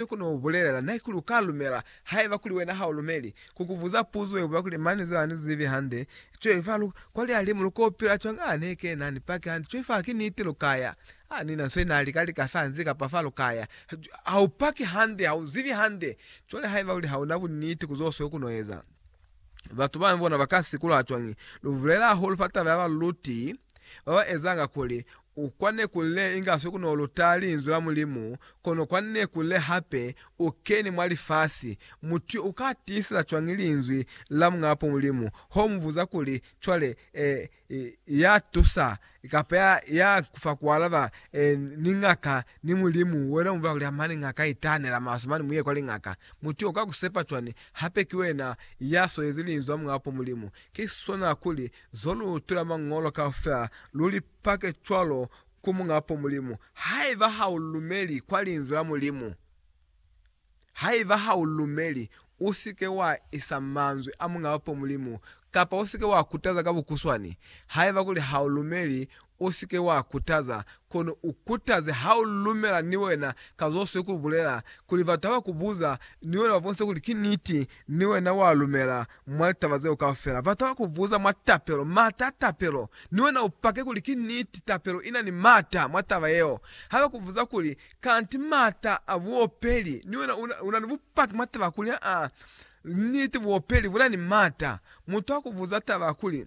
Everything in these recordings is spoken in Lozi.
Ni ku no bulelela, Na ki lu ka lumela, haiba kuli wena ha u lumeli, ku ku buza puzo ye buba kuli, Mane, zeo ha ni zibi hande. Cwaifa lu kwa lihalimu, lu ko pila cwang? Ha ne ke na ni paki hande. Cwaifa ha ki niti, lu ka ya. Ha ni na nso ye na lika lika fa nzi kapa fa, lu ka ya. Ha u paki hande, ha u zibi hande. Cwale haiba kuli ha u na buniti ku zo seo ku no eza, batu bambi bona ba ka sikuluha cwang? Lu bulela hahulu fa taba ya baluluti ba ba ezanga kuli U kwanne ku le inga swe ku no luta Linzwi la Mulimu, kono kwanne ku le hape u keni mwa lifasi. Mutu yo u ka tiiseza cwañi Linzwi la Muñapo Mulimu? Ho mu buza kuli, Cwale, eh, ya tusa, kapa ya, ya ku fa ku alaba, eh, ni ngaka, ni Mulimu, wena u bulela kuli, Amani, ngaka, itahanela maswe mane, mu ye kwa lingaka. Mutu yo u ka ku sepa cwañi, hape ki wena ya swezi Linzwi la Muñapo Mulimu? Ki sona kuli, zo lu tula Mañolo kaufela, lu li. pake cwalo ku Muñapo Mulimu, haiba ha u lumeli kwa Linzwi la Mulimu. Haiba ha u lumeli, u si ke wa isa manzwi a Muñapo Mulimu, kapa u si ke wa kutaza ka bukuswani. Haiba kuli ha u lumeli, u si ke wa kutaza, kono u kutaze ha u lumela ni wena ka zo swe ku bulela, kuli batu ha ba ku buza, ni wena ba bonise kuli ki niti, ni wena wa lumela Mwa litaba zeo kaufela, bataba kubuza mwa tapelo, mata a tapelo, ni wena upake kuli ki niti. Tapelo ina ni mata mwa taba yeo. Haba kubuza kuli, Kanti mata a buopeli? Ni wena una ni bupaki mwa taba kuli, aa, niti, buopeli buna ni mata. Mutu akubuza taba kuli.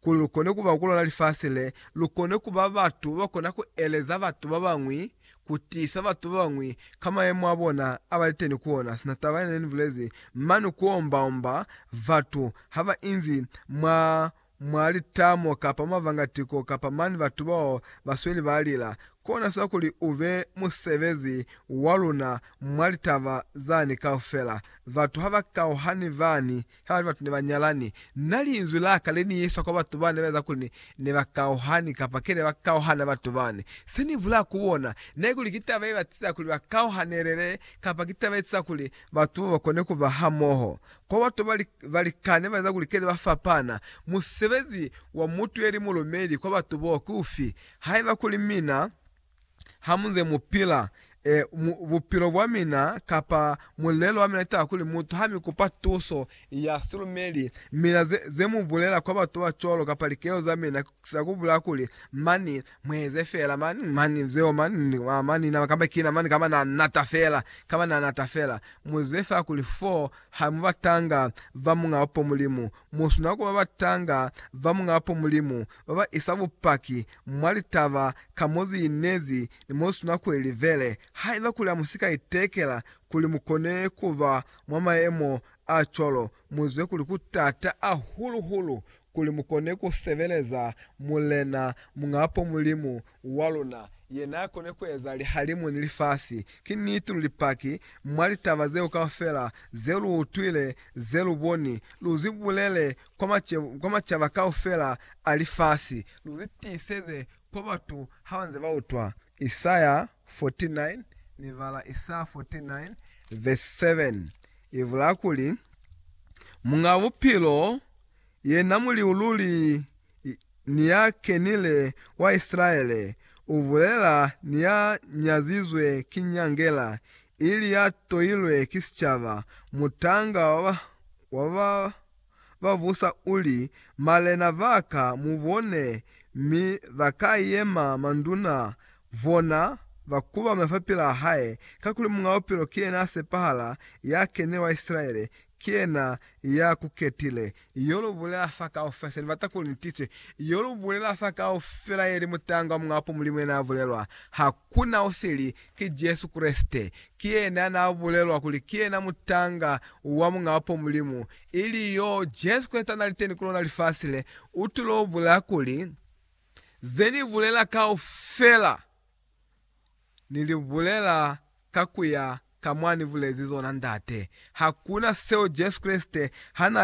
Kuli lu kone ku ba ku lona lifasi le, lu kone ku ba batu ba kona ku eleza batu ba bañwi, ku tiisa batu ba bañwi ka mayemo a bona a ba liteni ku ona. Sina taba yene ni bulezi mane ku omba-omba batu ha ba inzi mwa, mwa litamo kapa mwa vangatiko kapa mane batu bao ba sweli ba lila, kona sina kuli u be musebezi wa luna mwa litaba zani kaufela. Batu ha ba kauhani bani Habali batu ne ba nyalani, Na Linzwi la Ka le ni yesa kwa batu bane ba eza kuli ne, ne ba kauhani, kapa ke ne ba kauhana batu bane. Se Ni bulaa ku bona, na ikuli ki taba ye ba tiza kuli ba kauhanelele, kapa ki taba ye tiza kuli batu bo ba kone ku ba hamoho. Kwa batu ba li, ba likani ba eza kuli ke ne ba fapana. Musebezi wa mutu ye li mulumeli kwa batu bo ki ufi? Haiba kuli mina, ha mu nze mu pila, e, mu, bupilo bwa mina, kapa mulelo wa mina, ni taba kuli mutu ha mi kupa tuso ya silumeli, mina ze, ze mu bulela kwa batu ba cwalo, kapa likelo za mina, za ku bulela kuli, Mani, mu eze fela, mani, mani, zeo, mani, a, mani, na, kamba kina, mani, kamba na nata fela, kamba na nata fela. Mu zwe fela kuli foo ha mu batanga ba Muñ'a Upo Mulimu, Musina kuba batanga ba Muñapo Mulimu baba isa bupaki mwa litaba ka moziinezi ni mosina kuelivele. Haiba kuli hamusika itekela kuli mukone kuba mwa maemo acwalo, muzwe kuli kutata ahulu-hulu kuli mukone kusebeleza Mulena Muñapo Mulimu wa luna, ye n'a koni ku eza lihalimu ni lifasi, ki niti lu Lipaki mwa litaba zeo kaufela ze lu utwile, ze lu boni, lu zi bulele kwa macaba kaufela a lifasi, lu zi tiiseze kwa batu ha ba nze ba utwa. Isaya 49, Ni bala Isaya 49 vesi 7, i bulaa kuli, Muñ'a Bupilo, yena Muliululi ni ya kenile kwa Isilaele, u bulela ni ya nyazizwe ki nyangela, ili ya toilwe ki sicaba, mutanga wa ba, wa ba ba busa u li, Malena ba ka mu bone, mi ba ka yema manduna, bona, ba kubame fapilaa hae, kakuli Muñabupilo ki yena a sepahala, ya kenile wa Isilaele, Ki yena ya ku ketile. Yo lu bulela fa kaufela se ni bata kuli ni tiswe. Yo lu bulela fa kaufela ye li mutangwa muñapo Mulimu yena ya bulelwa. Ha ku na o sili. Ki Jesu Kreste. Ki yena ya na bulelwa kuli ki yena mutanga wa muñapo Mulimu. Ili yo Jesu Kreste ya na li teni ku lona lifasi le. U tulo bulela kuli, Ze ni bulela kaufela. Ni li bulela ka ku ya ka mwa Ni bulezi zona, Ndate. Hakuna seo Jesu Kreste ha na